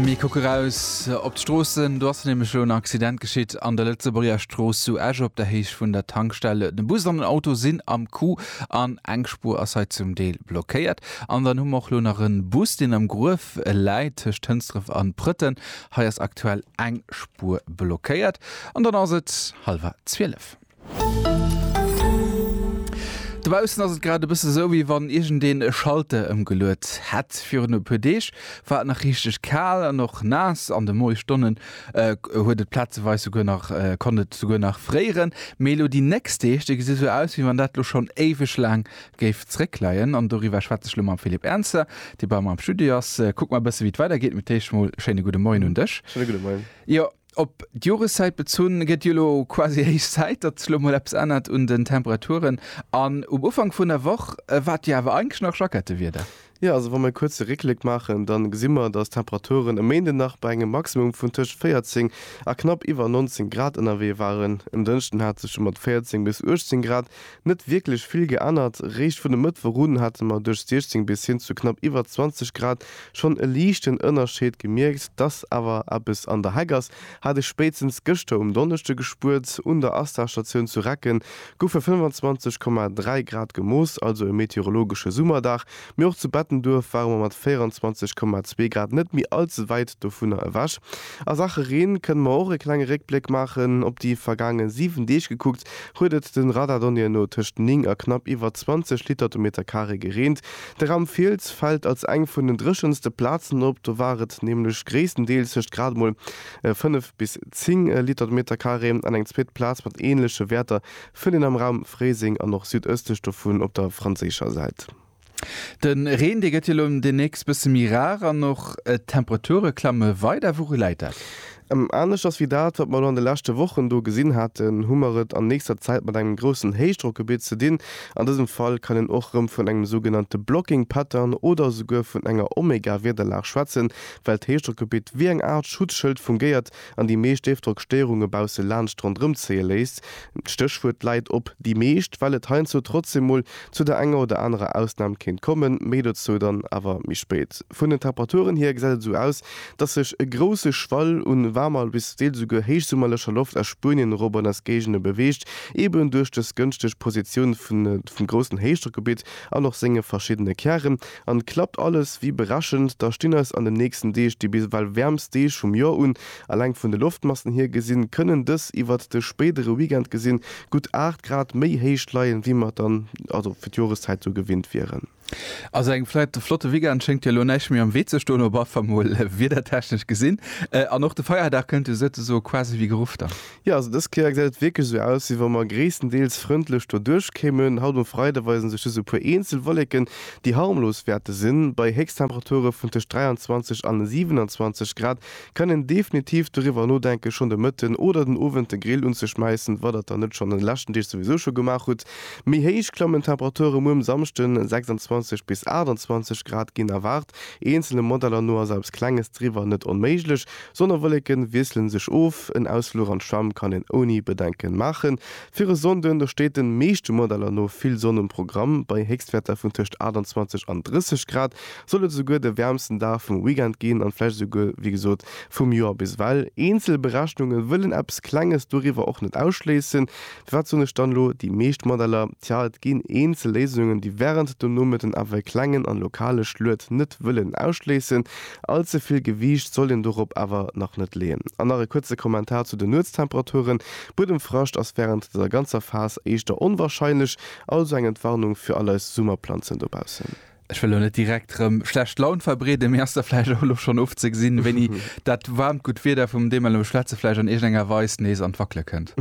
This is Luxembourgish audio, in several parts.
Mir kucke raus op d'Stroossen. Do ass nämlech elo en Accident geschitt an der Lëtzebuerger Strooss zu Esch op der Héicht vun der Tankstell. De Bus an den Auto sinn am Coup an eng Spuer ass hei zum Deel blockéiert. An dann hu mer och elo nach e Bus, deen am Gruef läit tëscht Hënsdref an Prëtten. Hei ass aktuell eng Spuer blockéiert. An dann ass et hallwer zwielef. Dobaussen ass et grad e bësse sou, wéi wann iergendeen e Schalter ëmgeluet hätt. Virun e puer Deeg war et nach richteg kal an och naass. An de Moiesstonnen huet et plazeweis souguer nach konnt et souguer nach fréieren. Mee elo déi nächst Deeg, déi gesi sou aus, wéi wann dat elo schonn éiweg laang géif zréckleien. An doriwwer schwätze ech elo mam Philippe Ernzer, dee bei mer am Studio ass. Kucke mer e bësse wéi et weidergeet. Mee d'éischt emol schéine gudde Moien un dech. Schéine gudde Moien. Jo, Op d'Joreszäit bezunn, gëtt jo elo quasi héich Zäit, datt sech elo mol eppes ännert un den Temperaturen. An um Ufank vun der Woch war et jo awer eigentlech nach Jackettëwieder. Jo, also wa mir e kuerze Réckléck maachen, da gesi mer, datt d'Temperaturen e Méinden nach bei engem Maximum vun tëscht 14 a knapp iwwer 19 Grad ënnerwee waren. En Dënschden hat sech jo mat 14 bis 18 Grad Net wierklech vill geännert. Réischt vun e Mëttwoch un hate mer duerch 16 bis hin zu knapp iwwer 20 Grad schonn e liichten Ënnerscheed gemierkt. Dass awer eppes an der Heck ass, hat ech spéitstens gëschter um Donneschde gespuert. Un der ASTA-Statioun zu Recken goufe 25,3 Grad gemooss, also e meteorologesche Summerdag, Mee och zu Bettenduerf ware mer mat 24,2 Grad net méi all ze wäit dovunner ewech. A Saache Reen kënne mer och e klenge Réckbléck maachen. Op déi vergaange 7 Deeg gekuckt, huet et de Radardonnéeën no tëscht 9 a knapp iwwer 20 Liter de Meter Carré gereent. De Raum Fiels fält als eng vun den dréchenste Plazen op, do war et nämlech gréisstendeels tëscht grad emol 5 bis 10 Liter de Meter Carré. An eng zweet Plaz mat änleche Wäerter Fënnt een am Raum Fréiseng an och südëstlech dovun op der franséischer Säit. De Reen, dee gëtt jo elo deemnächst bësse méi rar an och d'Temperature klamme weider. Wouru läit dat? Anescht ass wéi dat, wat mer elo an de leschte Wochen do gesinn haten, hu mer et an nächster Zäit mat engem groussen Héichdrockgebitt ze dinn. An dësem Fall kann een och rëm vun engem sougenannte Blocking Pattern oder esouguer vun enger Omega-Wiederlag schwätzen, well d'Héichdrockgebitt wéi eng Aart Schutzschëld fungéiert, an déi meescht Déifdrockstéierunge bausse laanscht ronderëm zéie léisst, d'Stéchwuert läit op déi meescht, well et heiansdo trotzdem mol zu der enger oder anerer Ausnam kéint kommen, méi dozou dann awer méi spéit. Vun den Temperaturen hier gesäit et esou aus, dass sech e grousse Schwall u waarmer bis deels esouguer héichsummerlecher Loft aus Spuenien erop an eis Géigende beweegt, eben duerch dës gënschteg Positioun vum groussen Héichdrockgebitt an och senge verschiddene Kären. An klappt alles wéi berechent, da stinn eis an den nächsten Deeg déi bis ewell wäermst Deeg vum Joer un. Alleng vun de Loftmassen hier gesinn, kënnen dës iwwert de spéidere Weekend gesinn gutt 8 Grad méi héich leien, wéi mer dann also fir d'Joreszäit esou gewinnt wieren. Also engem vläit flotte Weekend schéngt jo elo näischt méi am Wee ze stoen, op afall mol wiedertechnesch gesinn. An och de Feierdag kënnt jo souzesoe quasi wéi geruff dann. Jo, also dës Kéier gesäit et wierklech esou aus, wéi wa mer gréisstendeels frëndlech doduerch kéimen. Haut um Freide weisen sech just e puer eenzel Wolleken, déi harmlos wäerte sinn. Bei Héchsttemperature vun tëscht 23 an 27 Grad kann een definitiv doriwwer nodenken, schonn de Mëtten oder den Owend de Grill unzeschmäissen, wa der et dann net schonn an de leschten Deeg souwisou scho gemaach hutt. Méi héich klammen d'Temperature muer um Samschden, 26 bis 28 Grad ginn erwaart. Eenzele Modeller no ass eppes Klenges driwwer net onméiglech, Sonnewolleke wiesselen sech of, en Ausfluch an d'Schwämm kann een ouni Bedenken maachen. Fir e Sonnden, da steet den meeschte Modeller no vill Sonn um Programm. Bei Héchstwäerter vun tëscht 28 an 30 Grad soll et esouguer de wäermsten Dag vum Weekend ginn an vläicht esouguer, wéi gesot, vum Joer. Biswell eenzel Berechnunge wëllen eppes Klenges doriwwer och net ausschléissen, Wat soen ech dann elo? Déi meescht Modeller, tja, et ginn eenzel Léisungen, déi wärend dem Nomëtten awer e klengen an lokale Schluet net wëllen ausschléissen. Allze vill Gewiicht sollt een dorop awer nach net leeën. An nach e kuerze Kommentar zu den Nuetstemperaturen, Buedemfrascht ass wärend der ganzer Phas éischter onwarscheinlech, also eng Entwarnung fir all eis Summerplanzen dobaussen. Ech wëll elo net direkt rëm schlecht Laun verbreeden, mee ass da vläicht och elo schonn ofzegesinn, wéini dat waarmt, gutt Wieder, vum deem mer elo schwätzen, vläicht an iergendenger Weis nees an d'Wackele kënnt?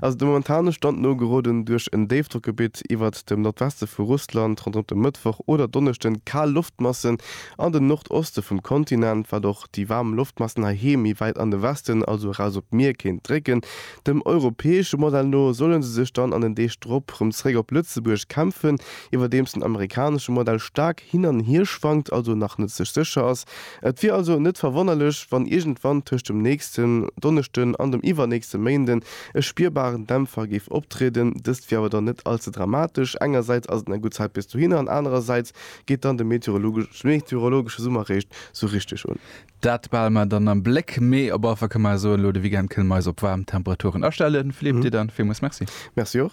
Also de momentane Stand no, geroden duerch en Déifdrockgebitt iwwert dem Nordweste vu Russland ronderëm de Mëttwoch oder Donneschden kal Loftmassen an den Nordoste vum Kontinent, wat och déi waarm Loftmassen heiheem méi wäit an de Westen, also eraus op d'Mier kéint drécken. Dem europäesche Modell no solle se sech dann an den Deeg drop rëm zeréck op Lëtzebuerg kämpfen. iwwerdeems den amerikanesche Modell staark hin an hier schwankt, also nach net sech sécher ass. Et wier also net verwonnerlech, wann iergendwann tëscht dem nächsten Donneschden an dem iwwernächste Méinden e spierbaren Dämpfer géif optrieden. Dëst wier awer dann net all ze dramatesch, engersäits ass et nach gutt Zäit bis dohinner an anerersäits geet dann de meteorologesche Summer réischt sou richteg un. Dat behale mer dann am Bléck, mee op alle Fall kënne mer soen, elo de Weekend kënne mer eis op waarm Temperaturen astellen. Philippe, dir dann villmools Merci. Merci och.